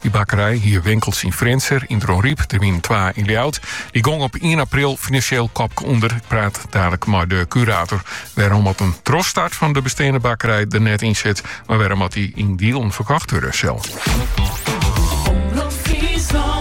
Dy bakkerij hie winkels yn Frjentsjer, yn Dronryp, der wienen twa yn Ljouwert. Dy gong op ien april finansjeel kopke ûnder. Ik praat dadelijk mei de kurator wêrom't in trochstart fan de besteande bakkerij der net yn sit, mar wêrom't dy yn dielen ferkocht wurde sil.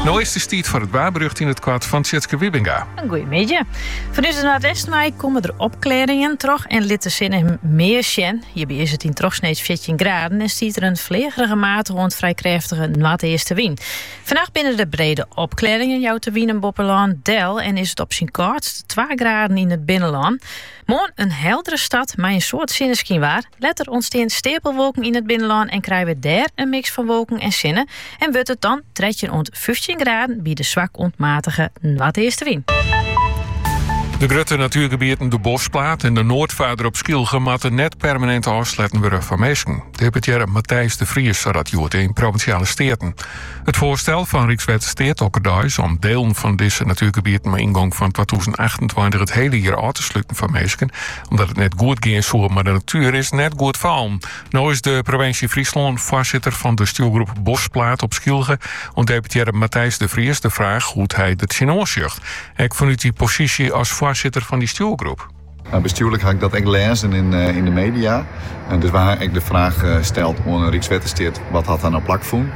No is it earst tiid foar it waarberjocht yn it koart fan Tjitske Wiebinga. In goeie middei. Fanút it noardeasten wei komme der opklearringen troch en lit de sinne mear sjen. Hjirby is it yn trochsneeds fjirtjin graden en stiet der in fleagerige matige oant frij krêftige noardeastewyn. Fannacht binne der brede opklearringen, jout de wyn in boppelân del en is it op syn kâldst twa graden yn it binnenlân. Moarn in heldere start mei in soad sinneskyn. Letter ûntstean steapelwolken yn it binnenlân en krije we dêr in miks fan wolken en sinne en wurdt it dan trettjin oant fyftjin graden by de swak oant matige noardeastewyn. De grutte natuergebieten De Boschplaat en de Noordvaarder op Skylge moatte net permanent ôfsletten wurde foar minsken. Deputearre Matthijs de Vries sei dat hjoed yn Provinsjale Steaten. It foarstel fan Rykswettersteat okkerdeis om dielen fan dizze natuergebieten mei yngong fan twatûzen achtentweintich it hiele jier ôf te sluten foar minsken Omdat it net goed gean soe, maar de natuer is net goed fallen. No is de provinsje Friesland voorzitter van de stuurgroep Bosplaat op Skylge oan deputearre Matthijs de Vries de vraag hoe hij dat tsjin oansjocht. Ek vanuit die positie als voorzitter van die stuurgroep. Nou, bestuurlijk had ik dat ook lezen in, eh, in de media. En dus waar ik de vraag eh, stelt aan Rijkswettersteert, wat had daar nou plak voor?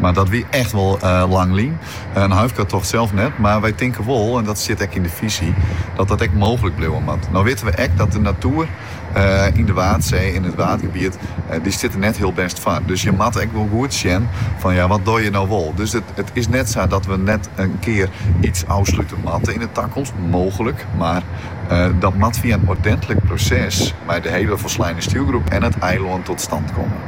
Mar dat wie echt wol lang lyn. In huifkartocht sels net, mar wy tinke wol, en dat stiet ek yn de fisy, dat dat ek mooglik bliuwe moat. No witte we ek dat de natoer yn de Waadsee, yn it Waadgebiet, dy stiet der net hiel bêst foar. Dus je moatte ek wol goed sjen fan ja, wat doje no wol? Dus it is net sa dat we net in kear iets ôfslute moatte yn de takomst, mooglik, mar dat moat fia in ordentlik proses mei de hele folsleine stjoergroep en it eilân tot stand komme.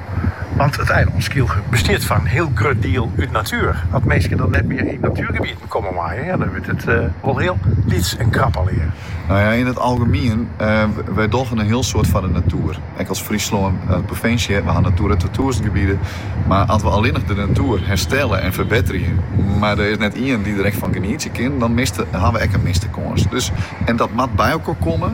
Want it eilân Skylge bestiet foar in hiel grut diel út natuer. As minsken dan net mear yn natuergebieten komme meie, ja, dan wurdt it wol hiel lyts en krap allegear. No ja, yn it algemien, wy dogge in hiel soad foar de natuer. Ek as Fryslân as provinsje, we ha Natura twatûzen gebieden. Mar as we allinnich de natuer herstelle en ferbetterje, mar der is net ien dy't der ek fan genietsje kin, dan ha we ek in miste kâns. Dus, en dat moat by elkoar komme.